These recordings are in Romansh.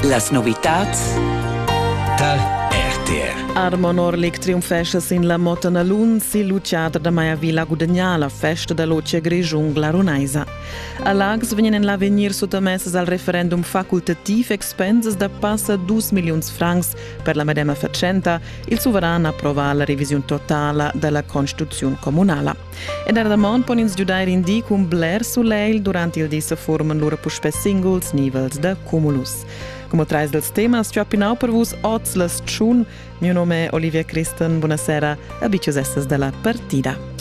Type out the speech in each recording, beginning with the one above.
Las novitads Tal RTR Armon Orlik triumfesce sin la Motanalun sil Luciater da Maiavilla gudagnà la festa da loce Grischun glarunaisa. A Lags vegnan en l'avegnir suttamessas al referendum facultativ expensas da passa 2 milliuns francs per la medema fatschenta. Il suveran approva la revisiun totala dalla constituziun comunala. E dar damont pon ins giudair in di cun bler sulegl durant il di se forman lura puspè singuls nivels da cumulus. Come trais dels temas ci ho pinau per vus oz la stschun. Mio nome è Olivia Christen, buonasera e bicius essas della partida.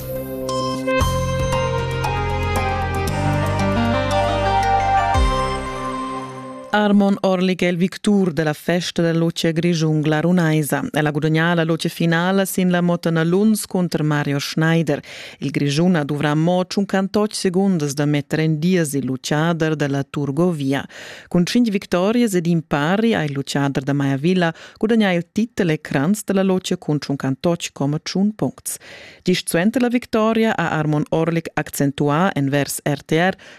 Armon Orlik è il victur della festa della luce grischun glarunaisa. El ha gudagnà la luce finala sin la moto Luns contro Mario Schneider. Il Grischun ha dovrà mo 58 segundas da metter en dies il luciader della Turgovia. Cun 5 victorias ed impari ha il luciader da Maya Villa gudagnà il titel e cranz della luce cun 58,1 puncts. Gist suenter la victoria ha Armon Orlik accentuà en vers RTR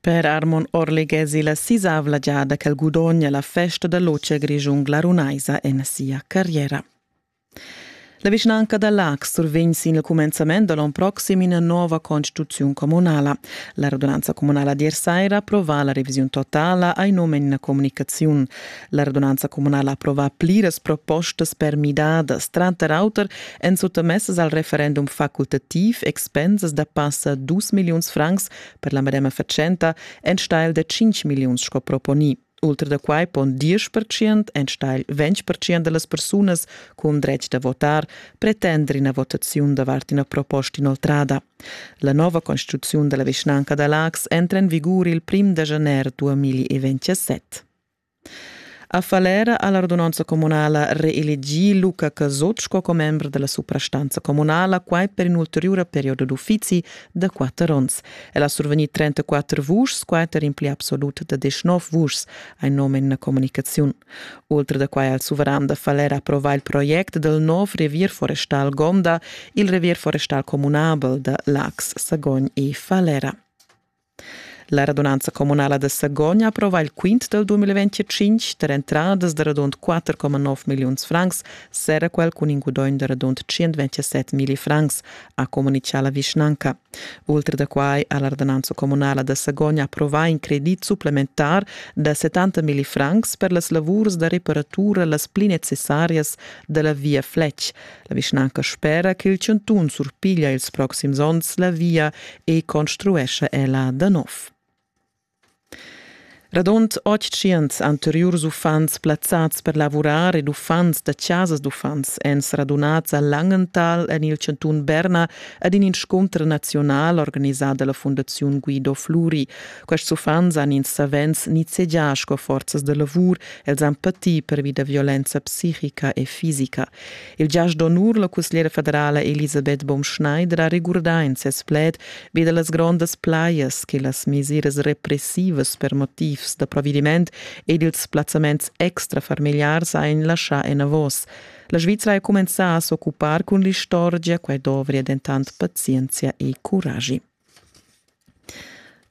Per Armon Orli gesi la sisavla giada ch'el gudogna la festa da loce grischun glarunaisa en sia carriera. La vischnanca da Lax survegn sin il cumenzament da l'on proxim ina nova constituziun communala. La radunanza communala di saira approvà la revisiun totala ai num en una comunicaziun. La radunanza communala approvà pliras propostas per midadas, tranter auter èn suttamessas al referendum facultativ expensas da passa 2 milliuns francs per la medema fatschenta enstagl da 5 milliuns sco proponì. Ultra da quai pon 10% enstagl 20% da las persunas cun dretg da votar pretender ina votaziun davart ina proposta inoltrada. La nova constituziun da la vischnanca da Lax entra en vigur il 1 da januar 2027. A Falera ha la radunanza communala reelegì Luca Casot sco commember da la suprastanza communala, quai per in'ulteriura perioda d'uffizi da quatter onns. El ha survegnì 34 vuschs, quai tar in pli absolut da 19 vuschs, hai num en la communicaziun. Ultra da quai ha il suveran da Falera approvà il project dal nov revier forestal Gonda, il revier forestal communabel da Lax, Sagogn e Falera. La radunanza communala da Sagogn approva il quint del 2025 per entradas da radund 4,9 milliuns francs, sera quel cun in gudogn da radund 127 mili francs, ha comunicà la vischnanca. Ultra da quai ha la radunanza communala da Sagogn approvà in credit supplementar da 70 mili francs per las lavurs da reparatura las pli necessarias della via Fletsch. La vischnanca spera ch'il chantun surpiglia ils proxims onns la via e construescha ella da nov. Radund 800 anteriurs uffants plazzads per lavurar ed uffants da chasas d'uffants èn radunads a Langenthal en il chantun Berna ad in inscunter naziunal organisà da la Fundaziun Guido Fluri. Quests uffants han ins savens nizzegià sco forzas da lavur, els han patì pervi da violenza psichica e fisica. Il giast d'onur, la cussgliera federala Elisabeth Baumschneider ha regurdà in ses pled vi da las grondas plajas che las mesiras repressivas per motivs da provediment ed ils plazzaments extrafamiliars hajan laschà enavos. La Svizra è cumenzà a s'occupar cun l'istorgia, quai dovria dentant pazienzia e curagi.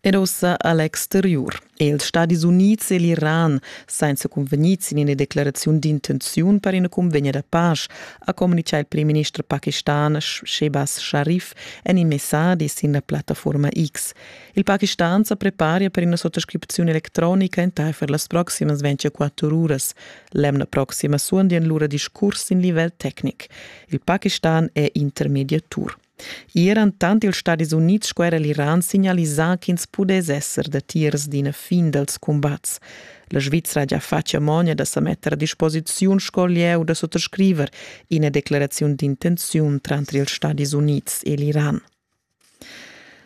Ed ussa a l'exteriur è ils Stadis Unids e l'Iran senza cunvegnì sin ina declaraziun d'intenziun per ina cunvegna da pasch, ha communitgà il primminister pakistan Shehbaz Sharif en in messadi sin la plattaforma X. Il Pakistan sa preparia per ina sottoscriziun electronica entaifer las proximas 24 uras. L'emna proxima suondian lura discurs sin livel tecnic. Il Pakistan è intermediatur. I eran tant ils Stadis Unids sco era l'Iran signalisà ch'ins pudess esser datiers d'ina fin dals cumbats. La Svizra gia fatga mogna da sa metter a disposiziun sco lieu da sottoscriver ina declaraziun d'intenziun tranter ils Stadis Unids e l'Iran.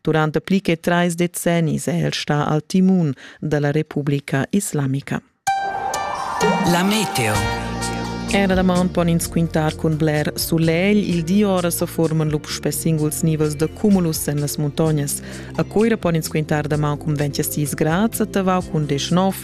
Durante pli che trais decennis è el stà al timun da la Republica Islamica. La meteo. Era damaun pon ins quintar cun bler sulegl. Il di ora sa forman lup sper singuls nivels da cumulus en las muntognas. A Coira pon ins quintar damaun cun 26 grads, a Tavau cun 19,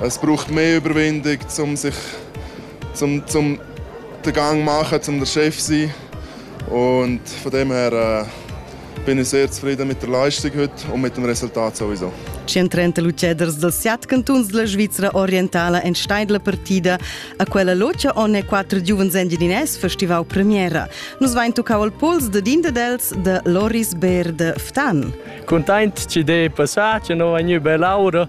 Es braucht mehr Überwindung, um sich zum, zum den Gang machen, um der Chef zu sein. Und von dem her äh, bin ich sehr zufrieden mit der Leistung heute und mit dem Resultat sowieso. 130 ceders dels set cantons della Svizzera orientala en steidla partida a quella locia onne quattro giuvens engineers festivau premiera. Nus vain tuccau al pols de din dels de Loris Ber de Ftan. Content ci de passà, ci no vegnu be laura